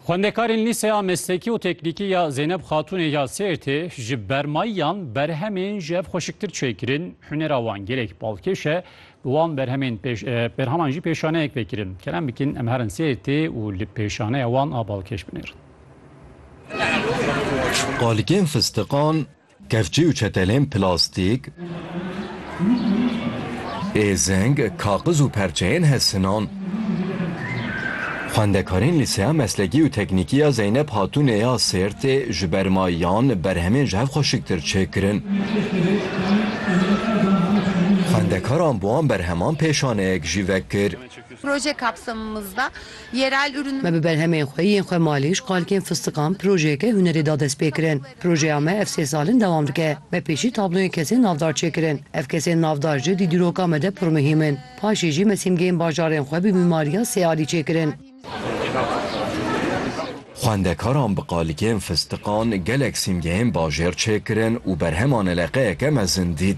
Xwendekarên Lîseya Meslekî û Teknîkî ya Zeyneb Xatûnê ya Sêrtê ji bermayiyan berhemên ji hev xweşiktir çêkirin, hunera wan gelek balkêş e, bi wan berhemên berheman jî pêşaneyek vekirin. Kerem bikin em herin Sêrtê û li pêşaneya wan a balkêş binêrin. Qalikên fistiqan Kevçî û çetelên plastîk, êzing, kaxiz û perçeyên hezsinan. Xwendekarên Lîseya Meslekî û Teknîkî ya Zeynep Hatûnê ya Sêrtê ji ber mayiyan berhemên ji hev xweşiktir çêkirin. Xwendekaran bi wan berheman pêşaneyek jî vekir. Proje kapsamımızda. Me bi berhemên xwe yên xwe malîş, qalkên fistiqan, projeyeke hunerê da destpêkirin. Projeya me ev sê sal in dewam dike. Me pêşî tabloyên kesên navdar çêkirin. Ev kesên navdar ji di dîroka me de pir muhîm in. Paşê jî me sîmgeyên bajarên xwe bi mîmariya sê alî çêkirin. Xwendekaran bi qalikên fistiqan gelek sîmgeyên bajêr çêkirin û berhema neleqeyeke mezin dît.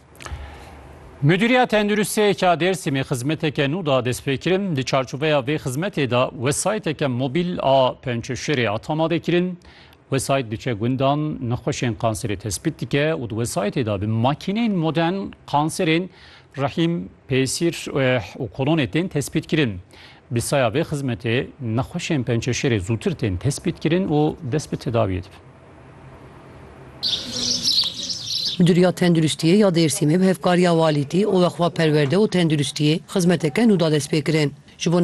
Mudîriya Tenduristiyê ya Dêrsimê xizmeteke nû da destpêkirin. Di çarçoveya vê xizmetê de wesayteke mobîl a pençeşerê hat amadekirin. Wesayt diçe gundan, nexweşên kanserê tespît dike û di wesaytê de bi makîneyên modern kanserên rehîm, pêsîr û kolonê tên tespîtkirin. Bi saya vê xizmetê nexweşên pençeşerê zûtir tên tespîtkirin û dest bi tedawiyê dibin. Midûriya Tenduristiyê ya Dêrsimê bi hevkariya Walîtî û Weqfa Perwerde û Tenduristiyê xizmeteke nû da destpêkirin. Ji bo